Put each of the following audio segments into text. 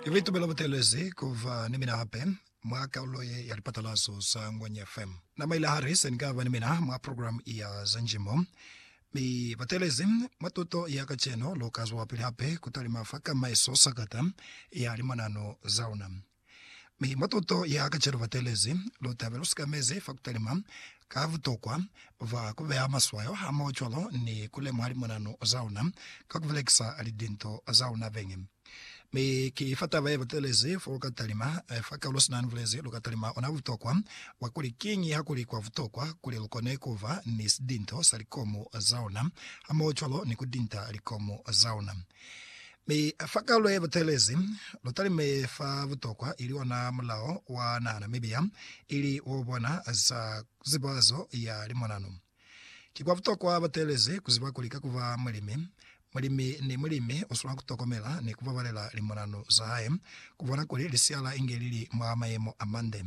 Ki bitumelo butelezi kuva ni mina hape. mwa kalulo ye ya lipatalazo za Ngwenya FM. Na maile hali se ni ka ba ni mina mwa program ya za njimo, mi batelezi mwa tuto ya kacenu lu ka zwelapili hape ku talima fa ka maeso sakata ya limanano za luna. Mi mwa tuto ya kacenu batelezi lu ta be lu sikamezi fa ku talima ka butokwa bwa ku beha maswayo hamoho cwalo ni ku lemuha limanano za luna ka ku belekisa lidinto za luna beñi. Mi ki fa taba ye batelezi fo lu ka talima, fa kaulo sina ni bulezi, lu ka talima ona butokwa bwa kuli kiñi ha ku li kwa butokwa kuli lu kone ku ba ni sidinto sa likomu za ona, hamohocwalo ni ku dinta likomu za ona. Mi fa kaulo ye batelezi, lu talime fa butokwa ili ona mulao wa naha Namibia, ili wo bona za zibazo ya limonano. Ki kwa butokwa bateelezi ku ziba kuli ka ku ba mulimi, mulimi ni mulimi u swanela ku tokomela ni ku babalela limonanu za hae, ku bona kuli lisiala inge li li mwa mayemo a mande.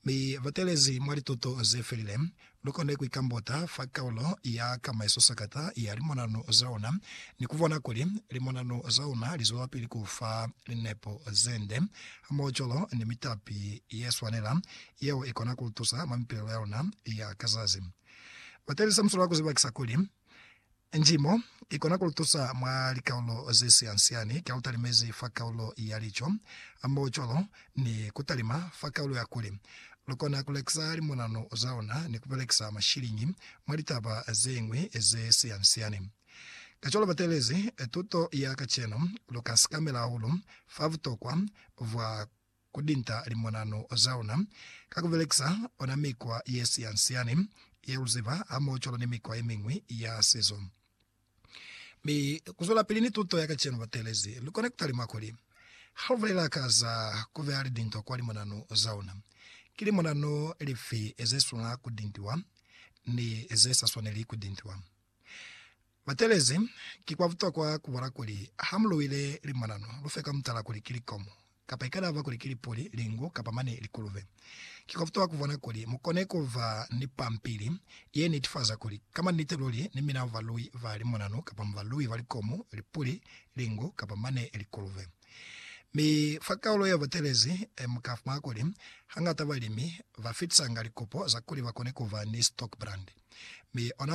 Mi bateelezi mwa lituto ze felile, lu kone ku ikambota fa kaulo ya ka maisosakata ya limonanu za una ni ku bona kuli limonanu za una li zwelapili ku fa linepo ze nde hamohocwalo ni mitapi ye swanela Yeo i kona ku tusa mwa mipilelo ya luna ya ka zazi. Bateni sa muswala ku zibakisa kuli, Njimo i kona ku lu tusa mwa likaulo ze sian-siani ka lu talimezi fa kaulo ya lico hamoho cwalo ni ku talima fa kaulo ya kuli. Lu kona ku lekisa limonano za luna ni ku belekisa mashiliñi mwa litaba ze ñwi ze sian-siani. Kacwalo bateelezi tuto ya kacenu, lu ka sikamela hahulu fa butokwa bwa ku dinta limonano za luna ka ku belekisa ona mikwa ye siansiani ye lu ziba hamohocwalo ni mikwa ye miñwi ya sizo. Mi ku zwelapili ni tuto ya kacenu, bateelezi lu kona ku talima kuli, ha lu bulela ka za ku beya lidinto kwa limonano za luna, ki limonano lifi ze swanela ku dintiwa ni ze sa swaneli ku dintiwa. Batelezi, Ki kwa butokwa ku bala kuli ha mu luwile limanano, lu fe ka mutala kuli ki likomo, kapa ikalaba kuli ki lipuli, lingu, kapa mane likulube. Ki kwa butokwa ku bona kuli mu kone ku ba ni pampili ye nitifaza kuli ka manite luli ni mina mu baluwi ba limanano kapa mu baluwi ba likomo, lipuli, lingu, kapa mane likulube. Mi fa kaulo ya batelezi, mu ka fumana kuli hañata balimi ba fitisanga likopo za kuli ba kone ku ba ni stockbrand, mi ona